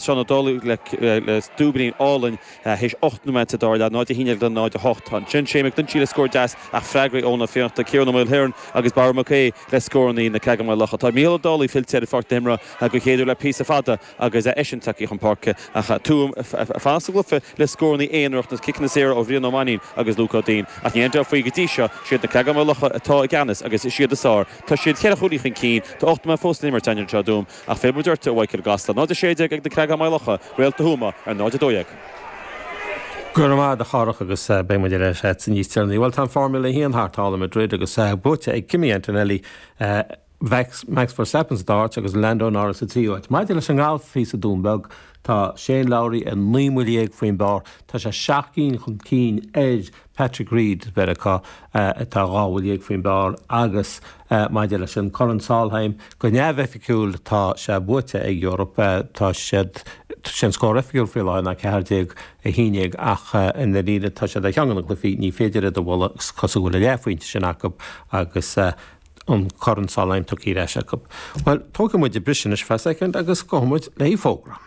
Seán Ó Dálaigh le cúilín álainn théis ocht nóimeat sa dara leath, 0 a hAon Déag le 0 a hOcht. Ansin Shane McGlinchey le scór deas ach freagraí Eoin Ó Fiannachta, Ciarán Ó Maoilchiaráin agus Barra Mac Aodha le scórannaí na Creagáin Maigh Locha. Tá Micheál Ó Dálaigh fillte ar pháirc na himeartha den chéad uair le píosa fada agus eisean tagtha chun páirce ach Tuam ag fanacht sa gcluiche le scórannaí aonaracha, ciceanna saora ó Bhrian Ó Mainnín agus Luke Ó Duinn. Ach ní aimseofaí go dtí seo. Siad na Creagáin Maigh Locha atá i gceannas agus siad is fearr. Tá siad ceithre chúilín chun cinn. Tá ocht nóimeat fós le n-imirt. Ach fé mar a deirtear i Mhaigh Cill-Gasta, 0, 16 ag Na Creagáin Maigh Locha, Réalta Thuama ar 0, 12. Go raibh maith agat, a Dharach, agus beidh muid ar ais níos deireanaí. Bhuel, tá an Formula 1 thart, thall i Madrid, agus buaite ag Kimi Antonelli, Max Verstappen sa dara háit, agus Lando Norris sa tríú áit. Maidir leis an ngalf thíos sa Dún Beag, tá Shane Lowry ar naoi mbuille dhéag faoin bpár, tá sé seacht gcinn chun cinn ar Patrick Reed Mheiriceá atá dhá bhuille dhéag faoin bpár agus maidir leis an Corn Solheim, go neamhoifigiúil tá sé buaite ag an Eoraip. Tá siad, sé an scór oifigiúil faoi láthair ná 14, 11 ach i ndaríre tá siad ar cheann de na cluifí, ní féidir iad a bhualadh, is cosúil go bhfuil an leathphointe sin acu agus an Corn Solheim tugtha ar ais acu. Bhuel, tógfaidh muid an briseadh anois feadh soicind agus gabhfaidh muid le fógra.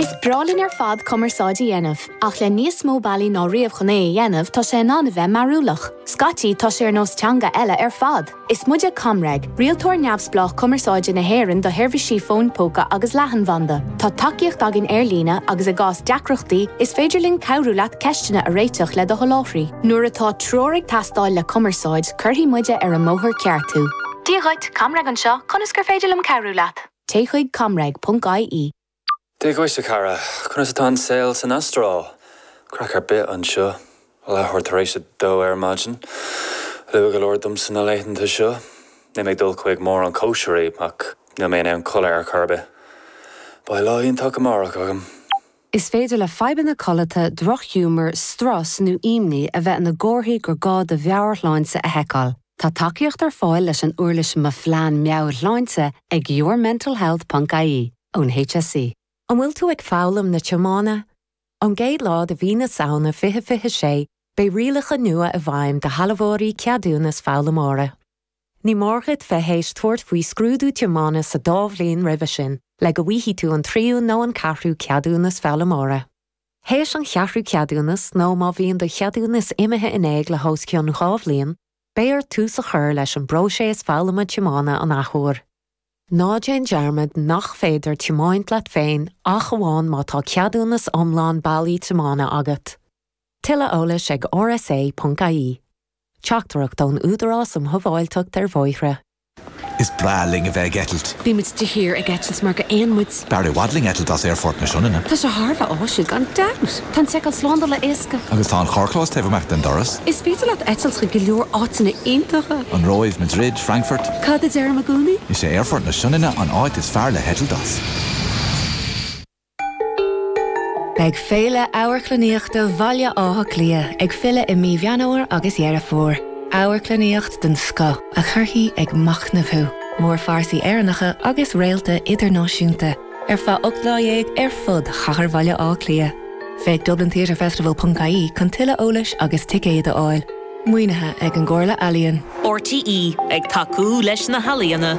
Is breá linn ar fad cumarsáid a dhéanamh, ach le níos mó bealaí ná riamh chun é a dhéanamh tá sé in ann a bheith mearúlach. Scaití tá sé ar nós teanga eile ar fad! Is muide ComReg, rialtóir neamhspleách cumarsáide na hÉireann do sheirbhísí fóin póca agus leathanbhanda. Tá tacaíocht againn ar líne agus i gcás deacrachtaí is féidir linn cabhrú leat ceisteanna a réiteach le do sholáthraí. Nuair atá treoir ag teastáil le cumarsáid, cuirfidh muide ar an mbóthar ceart thú. Dia dhuit, ComReg anseo, conas gur féidir liom cabhrú leat? Téigh chuig, ComReg, ponc, IE. Dia dhuit, a chara. Conas atá an saol san Astráil? Craic ar bith anseo. Leath uair tar éis a dó ar maidin. Luath go leor domsa na laethanta seo. Níl mé ag dul chuig mórán cóisirí, ach níl mé in ann codladh ar chor ar bith. Beidh lá iontach amárach agam. Is féidir le fadhbanna codlata, drochghiúmar, strus nó imní a bheith ina gcomharthaí gur gá do mheabhairshláinte a sheiceáil. Tá tacaíocht ar fáil leis an uirlis Mo Phlean Meabhairshláinte ag yourmentalhealth ponc ie ón HSE. An bhfuil tú ag foghlaim na tiomána? Ón gcéad lá de mhí na Samhna 2026, beidh rialacha nua i bhfeidhm do shealbhóirí ceadúnas foghlaimeora. Ní mór dhuit bheith théis tabhairt faoi scrúdú tiomána sa dá bhliain roimhe sin le go bhfaighidh tú an tríú nó an ceathrú ceadúnas foghlaimeora. Théis an cheathrú ceadúnas nó má bhíonn do cheadúnas imithe in éag le hos cionn dhá bhliain, beidh ort tús a chur leis an bpróiséas foghlama tiomána an athuair. Ná déan dearmad nach féidir tiomáint leat féin ach amháin má tá ceadúnas iomlán bailí tiomána agat. Tuilleadh eolais ag rsa.ie. Teachtaireacht ón Údarás um Shábháilteacht ar Bhóithre. Is breá linn a bheith ag eitilt. Bímid de shíor ag eitilt mar gur éin muid. B'fhearr i bhfad linn eitilt as Aerfort na Sionainne. Tá sé thar a bheith áisiúil gan dabht. Tá an seiceáil slándála éasca. Agus tá an carrchlós taobh amach den doras. Is féidir leat eitilt chuig go leor áiteanna iontacha. An Róimh, Madrid, Frankfurt. Cad a deirim i gcónaí? Is é Aerfort na Sionainne an áit is fearr le heitilt as. Beidh Féile Amharclannaíochta Bhaile Átha Cliath ag filleadh i mí Mheán Fhómhair agus Dheireadh Fómhair. Amharclannaíocht den scoth a chuirfidh ag machnamh thú, mórphearsaí Éireannacha agus réalta idirnáisiúnta, ar feadh ocht lá dhéag ar fud chathair Bhaile Átha Cliath. Féach dublintheatrefestival.ie chun tuilleadh eolais agus ticéad a fháil. Maoinithe ag an gComhairle Ealaíon. RTÉ ag tacú leis na healaíona.